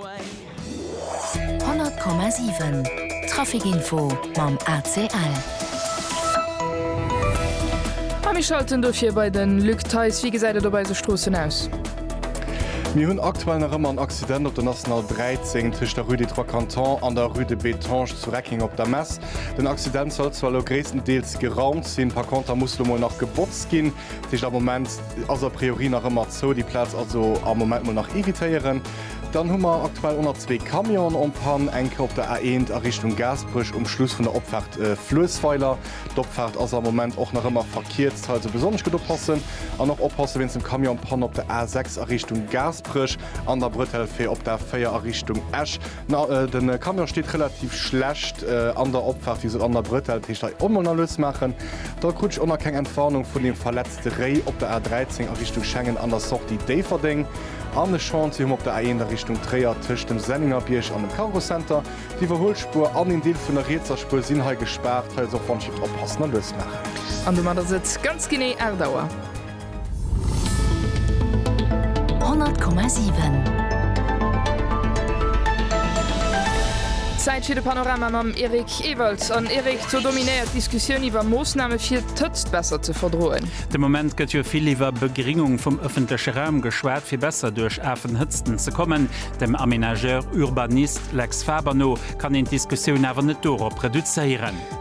100,7 Trafic Info mam ACL. A mir schalten dofir bei de Luc Theis. Wéi gesäit et op eise Stroossen aus? Mir hunn aktuell nach ëmmer en Accident op der National 13 tëscht der Rue des Trois Cantons an der Rue de Bettange zu Reckeng op der Mess. Den Accident soll zwar elo gréisstendeels geraumt sinn, par konter muss elo mol nach gebotzt ginn. Déi heescht am Moment ass a priori nach ëmmer zou, déi Plaz also am Moment mol nach evitéieren. Dann hu mer aktuell ëmmer zwee Camionen en panne, eng Kéier op der A1 a Richtung Gaasperech um Schluss vun der Opfaart Fluessweiler. D'Opfaart ass am Moment och nach ëmmer verkierzt, hei also besonnesch gutt oppassen an och oppasse wéinst dem Camion en panne op der A6 a Richtung Gaasperech an der Bretelle fir op d'A4 a Richtung Esch. Na, den Camion steet relativ schlecht an der Opfahrt wéi se an der Brëtell, heescht hei Ommel na lues maachen, da krut ech o na keng Entwarnung vun dem verletzte Réi op der A13 a Richtung Schengen an der Sortie Déifferdeng an e Chantier hum op der A1 a Richtung Tréier tëscht dem Senningerbierg an dem Cargo Center. D'Iwwerhuelspuer an een Deel vun der rietser Spuer sinn hei gespaart, hei ass och Wandschied, oppassen a lues maachen. An domadder sëtz ganz genee 8 Auer. 100,7. Zäit fir de Panorama mam Eric Ewald. An Eric, do dominéiert d'Diskussioun iwwer Moossname fir d'Hëtzt besser ze verdroen. De Moment gëtt jo vill iwwer Begringung vum ëffentleche Raum geschwat, fir besser duerch afen Hëtzten ze kommen. Dem Aménageur-Urbanist Lex Faber no kann een d'Diskussioun awer net dorop reduzéieren.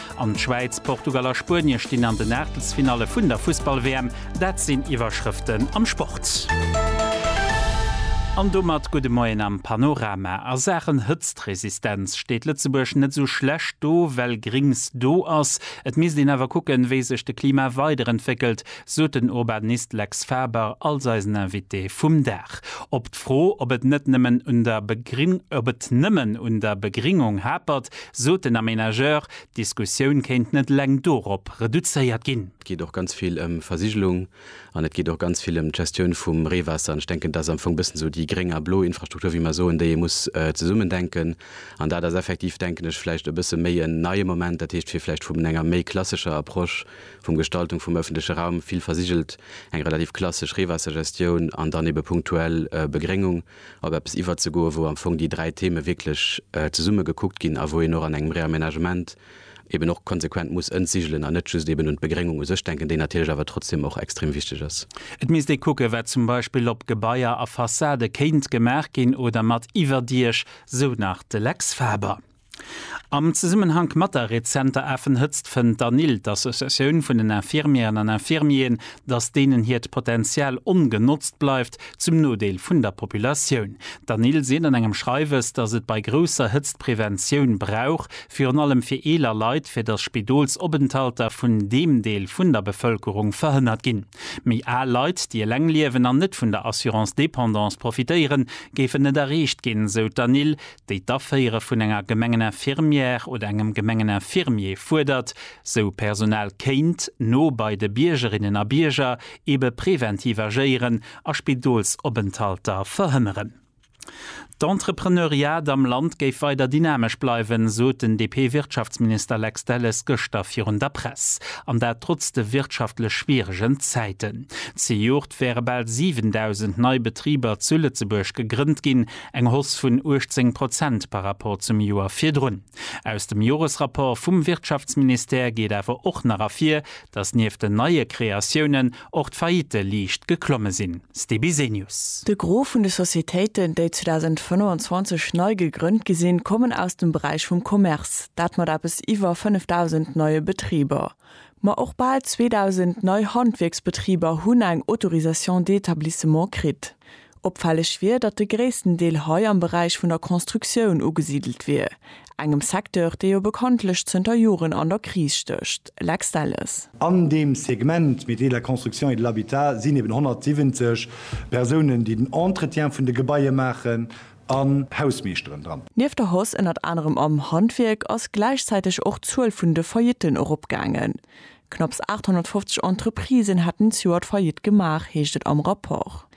An d'Schwäiz, Portugal a Spuenie stinn an den Aachtelsfinalle vun der Fussball-WM. Dat sinn d'Iwwerschrëften am Sport. An domat gudde Moien am Panorama. A Saachen Hëtztresistenz steet Lëtzebuerg net esou schlecht do, well Grings do ass. Et misst een awer kucken, wéi sech de Klima weiderentwéckelt, sot den Urbanist Lex Faber als eisen Invité vum Dag. Op d'Fro, ob et net nëmmen un der Begringung hapert, Sot den Aménageur, d'Diskussioun kéint net eleng dorop reduzéiert ginn. Et geet och ganz vill ëm Versigelung an et geet och ganz vill ëm d'Gestioun vum Reewaasser. An ech denken, dat ass am Fong e bëssen esou déi gréng a blo Infrastruktur, wéi mer soen, déi ee muss zesummen denken. An dat ass effektiv, denken ech, vläicht e bësse méi en neie Moment, dat heescht, fir vläicht vum enger méi klassescher Approche vum Gestaltung vum öffentleche Raum, vill versigelt, eng relativ klassesch Reewaassergestioun an dann ebe punktuell Begréngung. op eppes iwwerzegoen, wou am Fong déi dräi Theme wierklech zesumme gekuckt ginn a wou een och an engem Réaménagement eben och konsequent muss entsigelen an net just eben un d'Begréngung u sech denken, déi natierlech awer trotzdem och extrem wichteg ass. Et misst ee kucken, wat zum Beispill op Gebaier a Fassade kéint gemaach ginn oder mat Iwwerdiech, sou nach de Lex Faber. Am Zesummenhank mat der rezenter Affenhëtzt fënnt d'ANIL, d'Associatioun vun den Infirmieren an Infirmieren, datt deenen hiert Potenzial ongenotzt bleift, zum Nodeel vun der Populatioun. D'ANIL seet an engem Schreiwes, datt et bei grousser Hëtzt Preventioun brauch, virun allem fir eeler Leit, fir datt Spidolsopenthalter vun deem Deel vun der Bevëlkerung verhënnert ginn. Méi al Leit, déi eleng liewen an net vun der Assurance dépendance profitéieren, géifen net erreecht ginn, sou d'ANIL. déi d'Aféiere vun enger Gemengeninfirmière oder engem Gemengeninfirmier fuerdert, sou Personal kéint no bei de Biergerinnen a Bierger ebe preventiv agéieren a Spidolsopenthalter verhënneren. D'Entrepreneuriat am Land géif weider dynamesch bleiwen, sot den DP-Wirtschaftsminister Lex Delles gëschter virun der Press. An dat trotz de wirtschaftlech schwieregen Zäiten. Zejoert wäre bal 7.000 nei Betriber zu Lëtzebuerg gegrënnt ginn. Eng Hausse vun 18 Prozent par rapport zum Joer virdrun. Aus dem Joresrapport vum Wirtschaftsministère geet awer och nach ervir, datt nieft den neie Kreatiounen och d'Faillitte liicht geklomme sinn. Ste Bisenius. De Gros vun de Societéiten, déi 2025 nei gegrënnt gi sinn, kommen aus dem Beräich vum Commerce, dat mat eppes iwwer 5.000 neie Betriber. Ma och bal 2.000 nei Handwierksbetriber hunn eng Autorisation d'établissement kritt. Opfälleg wier, datt de gréissten Deel hei am Beräich vun der Constructioun ugesidelt wier, engem Secteur, dee jo bekanntlech zënter Joren an der Kris stécht. Lex Delles. An deem Segment Métiers de la construction et de l'habitat sinn eben 170 Persounen, déi den Entretien vun de Gebaie maachen, an Hausmeeschteren dran. Nieft der Hausse ënnert anerem am Handwierk ass gläichzäiteg och d'Zuel vun de Faillitten eropgaangen. Knapps 850 Entreprisen hätten d'Joert Faillite gemaach, heescht et am Rapport.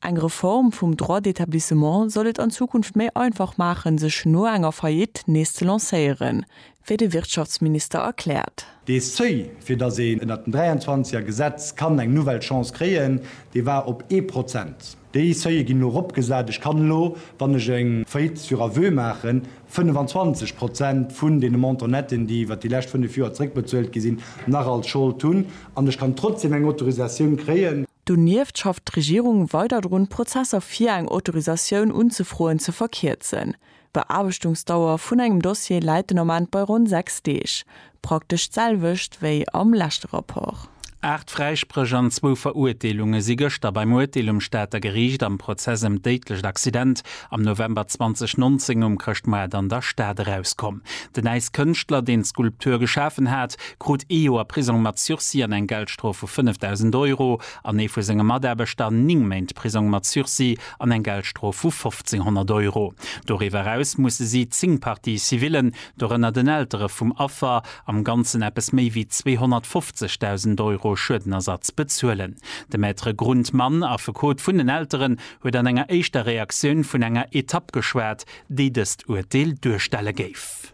Eng Reform vum Droit d'établissement soll et an Zukunft méi einfach maachen, sech no enger Faillite nees ze lancéieren, wéi de Wirtschaftsminister erkläert. Dee Seuil, fir datt een ënnert dem 23 er Gesetz kann eng nouvelle Chance kréien, dee war op ee Prozent. Déi Seuile ginn elo eropgesat. Ech kann elo, wann ech eng Faillite sur aveu maachen, 25 Prozent vun deene Montant netten, déi iwwer déi lescht fënnef Joer zeréckbezuelt gi sinn, nach als Schold hunn an ech kann trotzdeem eng Autorisatioun kréien. Donieft schafft d'Regierung weider drun, d'Prozesser fir eng Autorisatioun unzefroen ze verkierzen. D'Beaarbechtungsdauer vun engem Dossier läit den Ament bei ronn sechs Deeg, praktesch d'selwecht wéi am leschte Rapport. Aacht Fräispréch an zwou Verurteelunge si gëschter beim Urteel um Stater Geriicht am Prozess ëm d'déidlecht Accident am November 2019 um Chrëschtmoart an der Stad erauskomm. Den Äiskënschtler, deen d'Skulptur geschafen hat, krut ee Joer Prisong mat Sursis an eng Geldstrof vu 5.000 Euro an ee vu senge Mataarbechter ning Méint Prisong mat Sursis an eng Geldstrof vu 1.500 Euro. Doriwwer eraus musse si zéng Parties civillen, dorënner den Eltere vum Affer, am Ganzen eppes méi wéi 250.000 Euro Schuedenersatz bezuelen. De Maître Grundmann, Affekot vun den Elteren, huet an enger éischter Reaktioun vun enger Etapp geschwat, déi dëst Urteel duerstelle géif.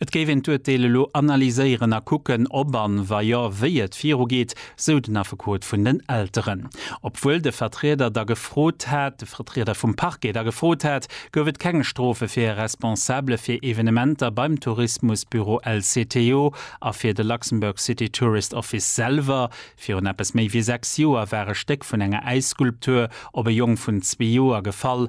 Et géif een d'Urteel elo analyséieren a kucken, ob an wa jo, wéi et virugeet, sou den Affekot vun den Elteren. Obwuel de Vertrieder da gefrot hat, de Vertrieder vum Parquet da gefrot hat, gouf et keng Strofe fir e Responsabele fir Evenementer beim Tourismusbüro LCTO a fir de Luxembourg City Tourist Office selwer. Virun eppes méi wéi sechs Joer war e Stéck vun enger Äisskulptur op e Jong vun zwee Joer gefall,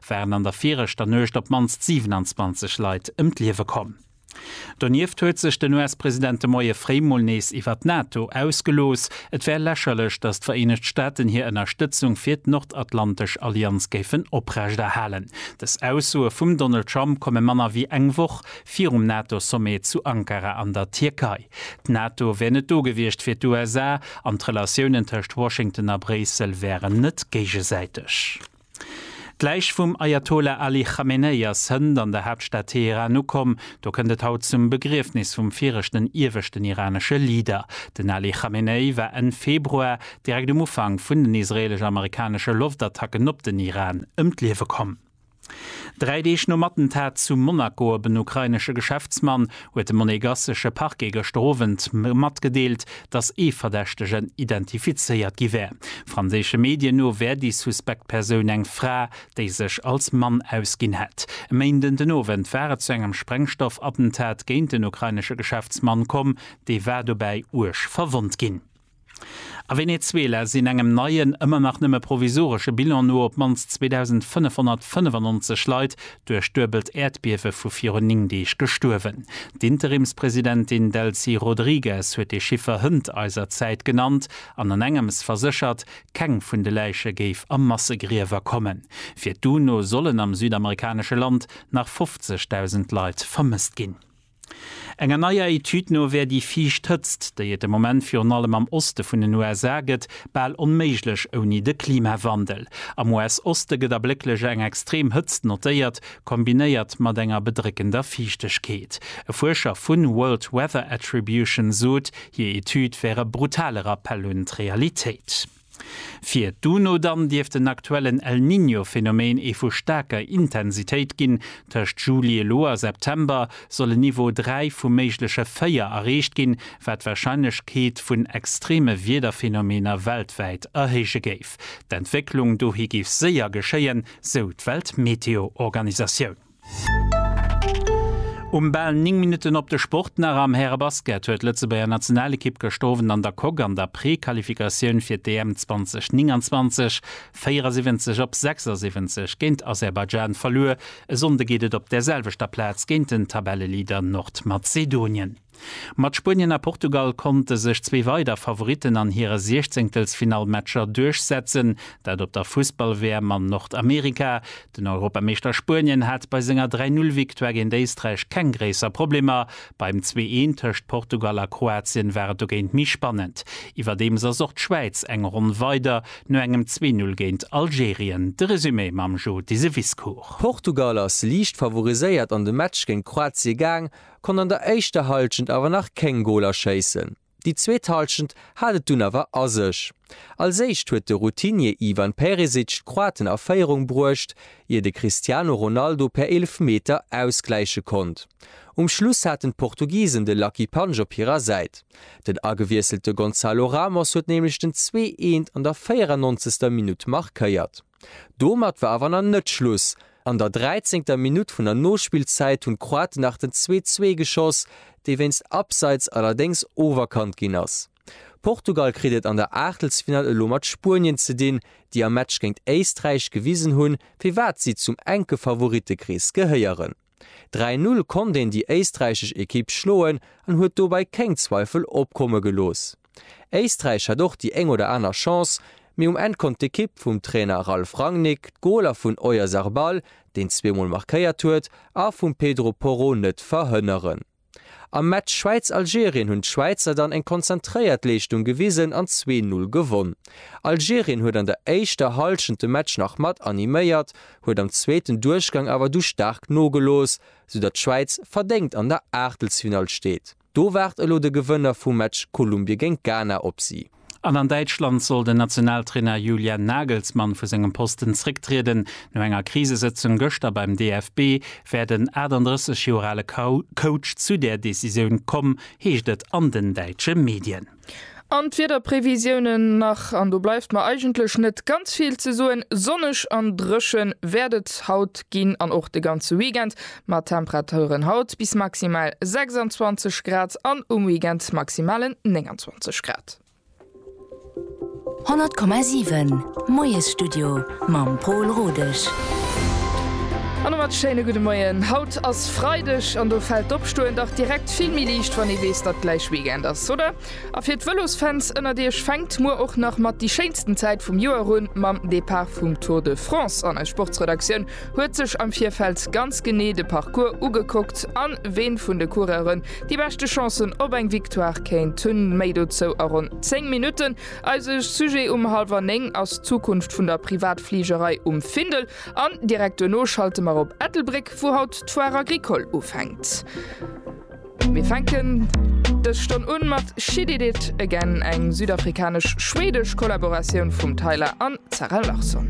waren an der viregter Nuecht op d'mannst 27 Leit ëm d'Liewe komm. Donieft huet sech den US-President de Moie fréi mol nees iwwert d'NATO ausgelooss, et wär lächerlech, datt d'Vereenegt Staaten hir Ënnerstëtzung fir d'nordatlantesch Allianz géifen oprechterhalen. Dës Aussoe vum Donald Trump komme manner wéi eng Woch virum NATO-Sommet zu Ankara an der Tierkei. D'NATO wär net do gewiescht fir d'USA an d'Relatiounen tëscht Washington a Bréissel wären net géigesäiteg. D'Läich vum Ajatollah Ali Chamenei ass hënt an der Haaptstad Teheran ukomm. Do kënnt et haut zum Begriefnis vum viregten ieweschten iranesche Leader. Den Ali Chamenei war Enn Februar, direkt um Ufank vun den israeelesch-amerikanesche Loftattacken op den Iran, ëm d'Liewe komm. Dräi Deeg nom Attentat zu Monaco op en ukrainesche Geschäftsmann huet de monegassesche Parquet gëschter Owend matgedeelt, datt ee Verdächtegen identifizéiert gi wär. Franséische Medien no wär déi suspekt Persoun eng Fra, déi sech als Mann ausginn hätt. E Méinden den Owend war et zu engem Sprengstoffattentat géint en ukrainesche Geschäftsmann komm, dee war dobäi uerg verwonnt ginn. A Venezuela sinn engem neien, ëmmer nach nëmme provisoresche Bilan no op d'mannst 2.595 Leit duerch duebelt Äerdbiewe vu virun 9 Deeg gestuerwen. D'Interimspresidentin Delcy Rodriguez huet dee Chiffer hënt eiser Zäit genannt an an engems verséchert, keng vun de Läiche géif a Massegriewer kommen. Fir d'UNO sollen am südamerikanesche Land nach 50.000 Leit vermësst ginn. Enger neier Etüd no wär déi viischt Hëtzt, déi et de Moment virun allem am Oste vun den USA gëtt, bal onméiglech ouni de Klimawandel. Am US-Oste gëtt ablécklech eng extrem Hëtzt notéiert, kombinéiert mat enger bedréckender Fiichtegkeet. E Fuerscher vu World Weather Attribution sot, hir Etüd wär e brutale Rappell un d'Realitéit. Fir d'UNO dann dierft den aktuellen El Niño Phenomen ee vu staarker Intensitéit ginn. Tëscht Juli elo a September soll en Niveau 3 vu méigleche 4 erreecht ginn, wat d'Warscheinlechkeet vun extreme Wiederphenomener weltwäit erhéije géif. D'Entwécklung dohi géif séier geschéien, sou d'Weltmeteoorganisatioun. Um bal 9 Minutten op de Sport nach, Am Härebasket huet d'Lëtzebuerger Nationalekipp gëscht Owend an der Coque an der Prequalifikatioun fir d'EM 2029 74 op 76 géint Aserbaidschan verluer. E Sonnde geet et op där selwechter Plaz géint den Tabelleleader Nordmazedonien. Mat Spuenien a Portugal konnte sech zwee weider Favoritten an hire Siechzéngtelsfinallmatcher duerchsetzen, dat op der Fussball-WM an Nordamerika. Den Europameeschter Spuenien hat bei senger 3 Null Victoire géint Éisträich keng gréisser Problemer. Beim Zwee Een tëscht Portugal a Kroatien war et dogéint méi spannend. Iwwerdeems ass och d'Schwäiz eng Ronn weider no engem Zwee Null géint Algerien. De Resumé mam Joe Deseviscourt. Portugal ass liicht favoriséiert an de Match géint Kroatie gaang, konnt an der éischter Hallschent awer nach kéng Goler schéissen. Déi zweet Hallschent hat et dunn awer a sech. Als éischt huet de Routinier Ivan Perisic d'Kroaten a Féierung bruecht, ier de Cristiano Ronaldo per Eelefmeter ausgläiche konnt. Um Schluss haten d'Portugisen de Lucky Punch op hirer Säit. Den agewiesselte Gonzalo Ramos huet nämlech den 2 Eent an der 94. Minutt markéiert. Domat war awer nach net Schluss, an der dräizéngter Minutt vun der Nospillzäit hunn d'Kroaten nach den 2:2 geschoss, dee wéinst Abseits allerdéngs oferkannt ginn ass. Portugal kritt et an der Aachtelsfinall elo mat Spuenien ze dinn, déi am Match géint Éisträich gewisen hunn, firwat si zum enke Favorittekrees gehéieren. Dräi Null konnt een déi éisträichesch Ekipp schloen an huet dobäi kéng Zweifel opkomme gelooss. Éisträich hat och déi éng oder aner Chance, mee um Enn konnt d'Ekipp vum Trainer Ralf Rangnick d'Goler vun Oyarzarbal, deen zweemol markéiert huet, a vum Pedro Porro net verhënneren. Am Match Schwäiz-Algerien hunn d'Schwäizer dann eng konzentréiert Leeschtung gewisen an zwee Null gewonn. Algerien huet an der éischter Hallschent de Match nach mat animéiert, huet am zweeten Duerchgang awer du staark nogelooss, soudatt d'Schwäiz verdéngt an der Aachtelsfinall steet. Do waart elo de Gewënner vum Match Kolumbie géint Ghana op si. An an Däitschland soll den Nationaltrainer Julian Nagelsmann vu sengem Posten zrécktrieden. No enger Krisesëtzung gëschter beim DFB wär den 38 Joer ale Coach zu där Decisioun komm, heescht et an den däitsche Medien. An d'Wiederprevisiounen nach, an do bleift mer eigentlech net ganz vill ze soen. Sonneg an dréche wäert et haut ginn an och de ganze Weekend. Mat Temperaturen haut bis maximal 26 Grad an um Weekend maximalen 29 Grad. 100,7 Moiesstudio mam Paul Rodesch. An domat schéine gudde Moien. Haut ass Freideg an do fält d'Opstoen dach direkt vill méi liicht, wann ee weess, datt gläich Weekend ass, oder? A fir d'Vëlosfans ënnert iech fänkt muer och nach mat déi schéinsten Zäit vum Joer un, mam Depart vum Tour de France an eis Sportsredaktioun huet sech am Virfeld ganz genee de Parcours ugekuckt an ween vun de Coureuren déi beschte Chancen op eng Victoire kéint hunn. Méi dozou a ronn 10 Minutten. Eise Sujet um halwer 9 ass d'Zukunft vun der Privatfligerei um Findel an direkt duerno schalte mer op Ettelbréck, wou haut d'Foire Agricole ufänkt. Mir fänken dës Stonn un mat She Did It Again, eng südafrikanesch-schwedesch Kollaboratioun vum Tyla an Zara Larsson.